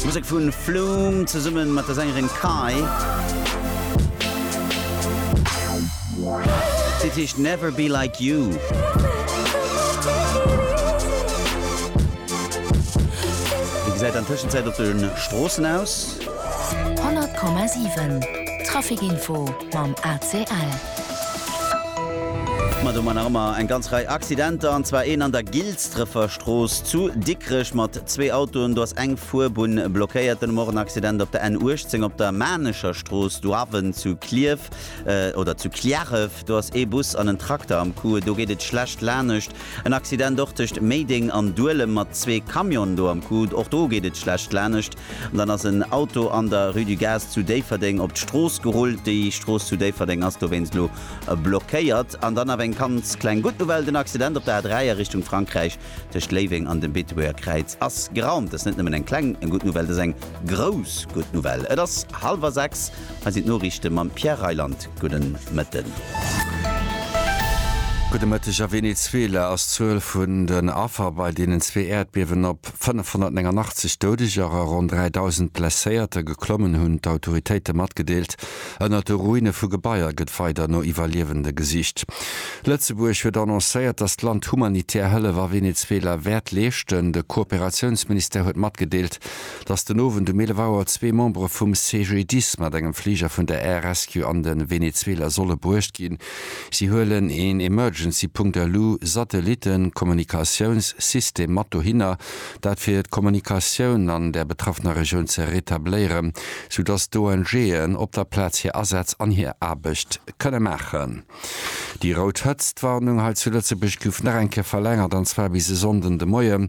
Musek vu Flume zesumme mat der Sängerin Kai. D'Lidd heescht Never Be Like You. Wéi gesäit an Tëschenzäit op de Stroossen aus? 100,7 Trafikinfo mam ACL. Ma do mar nach ëmmer eng ganz Rei Accidenter, an zwar een an der Gilsdrefer Strooss zu Dikrech mat zwee Autoen. Do ass eng Fuerbunn blockéiert. Dunn hu mer och en Accident op der N 18 op der Maarnecher Strooss, Douaven zu Clierf, oder zu Cliärref. Do ass ee Bus an en Trakter am Coup. Do geet et schlecht lanescht. En Accident och tëscht Méideng an Duelem mat zwee Camionen do am Coup. Och do geet et schlecht lanescht. An dann ass en Auto an der Rue du Gaz zu Déifferdeng op d'Strooss gerullt. Déi Strooss zu Déifferdeng ass dowéinst elo blockéiert. An dann awer eng ganz kleng gutt Nouvelle, Den Accident op der A3 a Richtung Frankräich tëscht Léiweng an dem Beetebuerger Kräiz ass geraumt. Dat ass net nëmmen eng kleng gutt Nouvelle, dat ass eng grouss gutt Nouvelle. Et ass hallwer sechs. Hei sinn d'Noriichte mam Pierre Reyland. Gudde Mëtten. Gudde Mëtteg. A Venezuela ass d'Zuel vun den Affer bei deenen zwee Äerdbiewen op. 589 Doudeger a ronn 3.000 Blesséierter geklommen, hunn d'Autoritéite matgedeelt. Ënnert de Ruine vu Gebaier gëtt weider no Iwwerliewende gesicht. Lëtzebuerg huet annoncéiert, datt d'Land humanitär Hëllef a Venezuela wäert leeschten. De Kooperatiounsministère huet matgedeelt, datt den Owend um 11 Auer zwee Membere vum CGDIS mat engem Fliger vun der Air Rescue an de Venezuela solle bruecht ginn. Si huelen een Emergency Punkt elu, Satellitten, Kommunikatiouns, System mat dohinner, dat fir d'Kommunikatioun an der betraffener Regioun ze retabléieren, sou dass d'ONG'en op der Plaz hir Asätz an hir Aarbecht kënne maachen. Déi rout Hëtztwarnung hei zu Lëtzebuerg gouf nach eng Kéier verlängert, an zwar bis e Sonnden de Moien.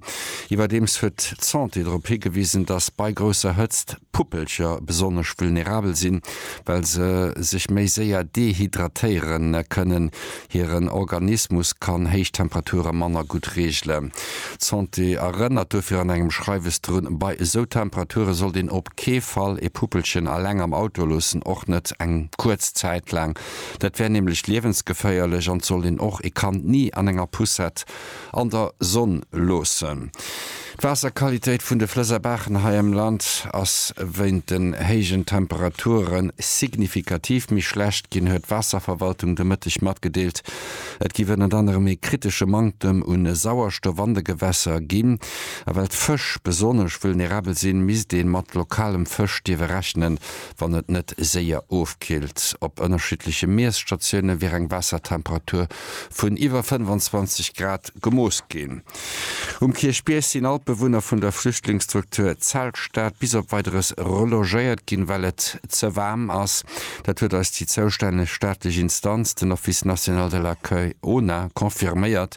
Iwwerdeems huet d'Santé drop higewisen, dass bei grousser Hëtzt d'Puppelcher besonnesch vulnerabel sinn. well se sech méi séier dehydratéiere kënnen. Hiren Organismus kann héich Temperature manner gutt reegelen. D'Santé erënnert dofir an engem Schreiwes drun, Bei esou Temperature sollt een op kee Fall ee Puppelchen alleng am Auto loossen, och net eng kuerz Zäit laang. Dat wär nämlech liewensgeféierlech an et sollt een och ee Kand ni an enger Poussette an der Sonn loossen. D'Waasserqualitéit vun de Flëss a Baachen hei am Land ass wéint den héijen Temperature signifikativ méi schlecht ginn, huet d'Waasserverwaltung de Mëtteg matgedeelt. Et géif ënnert anerem ee kritesche Manktem u Sauerstoff an de Gewässer ginn. A well d'Fësch besonnesch vulnerabel sinn, misst ee mat lokalem Fësch dierfe rechnen, wann et net séier ofkillt. Op ënnerschiddleche Miesstatioune wier eng Waassertemperatur vun iwwer 25 Grad gemooss ginn. Um Kierchbierg sinn all d'Bewunner vun der Flüchtlingsstruktur Zeltstad bis op Weideres relogéiert ginn, well et ze waarm ass. Dat huet eis déi zoustänneg staatlech Instanz, den Office national de l'accueil, ONA, confirméiert.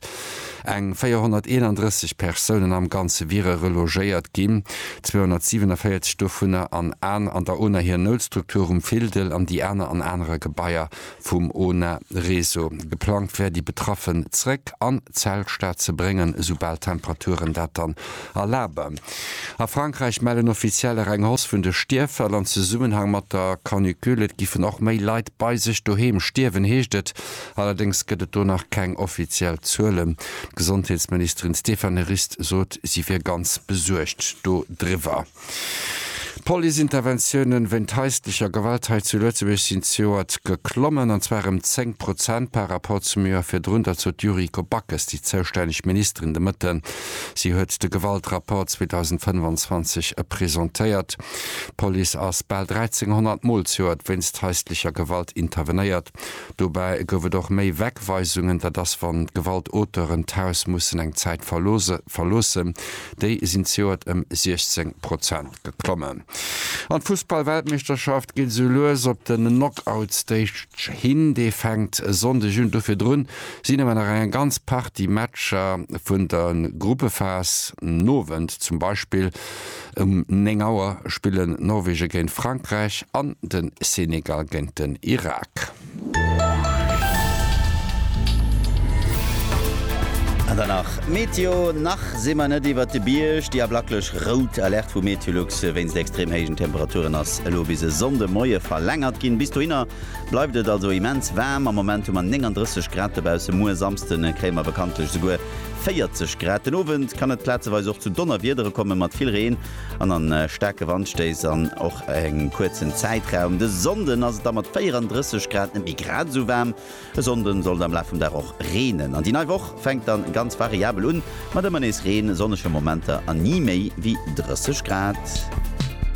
Eng 431 Persounen am Ganze wiere relogéiert ginn, 247 dovunner an an der ONA hir Noutstruktur um Fildel an déi aner an anere Gebaier vum ONA-Réseau. Geplangt wär, déi Betraffen zréck an d'Zeltstad ze bréngen, esoubal d'Temperaturen dat dann erlaben. A Frankräich mellen Offizieller eng Hausse vun de Stierffäll an Zesummenhang mat der Canicule. Et giffen och méi Leit bei sech doheem stierwen, heescht et. Allerdéngs gëtt et do nach keng offiziell Zuelen. D'Gesondheetsministerin Stéphane Rist sot, si wier ganz besuergt do driwwer. D'Police-Interventiounen wéint haislecher Gewalt hei zu Lëtzebuerg sinn zejoert geklommen, an zwar ëm 10 Prozent par Rapport zum Joer virdrun. Dat sot d'Yuriko Backes, déi zoustänneg Ministerin, de Mëtten. Si huet de Gewaltrapport 2025 presentéiert. D'Police ass bal 1.300 Mol zejoert wéinst haislecher Gewalt intervenéiert. Dobäi gouf et och méi Wegweisungen, dat ass wann d'Gewaltauteuren d'Haus mussen eng Zäit verloossen. Déi sinn zejoert ëm 16 Prozent geklommen. An d'Fussballweltmeeschterschaft geet esou lues op den Knockout-Stage hin. Dee fänkt e Sonndeg un. Do virdrun sinn awer nach eng ganz Partie Matcher vun der Gruppephas, den Owend zum Beispill. Um 9 Auer spillen Norwegen géint Frankräich an den Senegal géint den Irak. An dann nach Meteo, Nach si mer net iwwert de Bierg. Déi ablaklech rout Alerte vu Meteolux wéinst extrem héijen Temperaturen ass elo bis e Sonnde Moie verlängert ginn. Bis dohinner bleift et also immens waarm. Am Moment hu mer 39 Grad dobausse. Muer Samsde kréie mer bekanntlech esouguer 40 Grad. Den Owend kann et plazeweis och zu Donnerwiedere komme mat vill Reen an a staarke Wandstéiss an och engem kuerzen Zäitraum. De Sonnden ass et da mat 34 Grad net méi grad esou waarm. E Sonnden soll et am Laf vum Dag och reenen an déi nei Woch fänkt dann ganz variabel un mat ëmmer nees Reen, sonnege Momenter an ni méi wéi 30 Grad.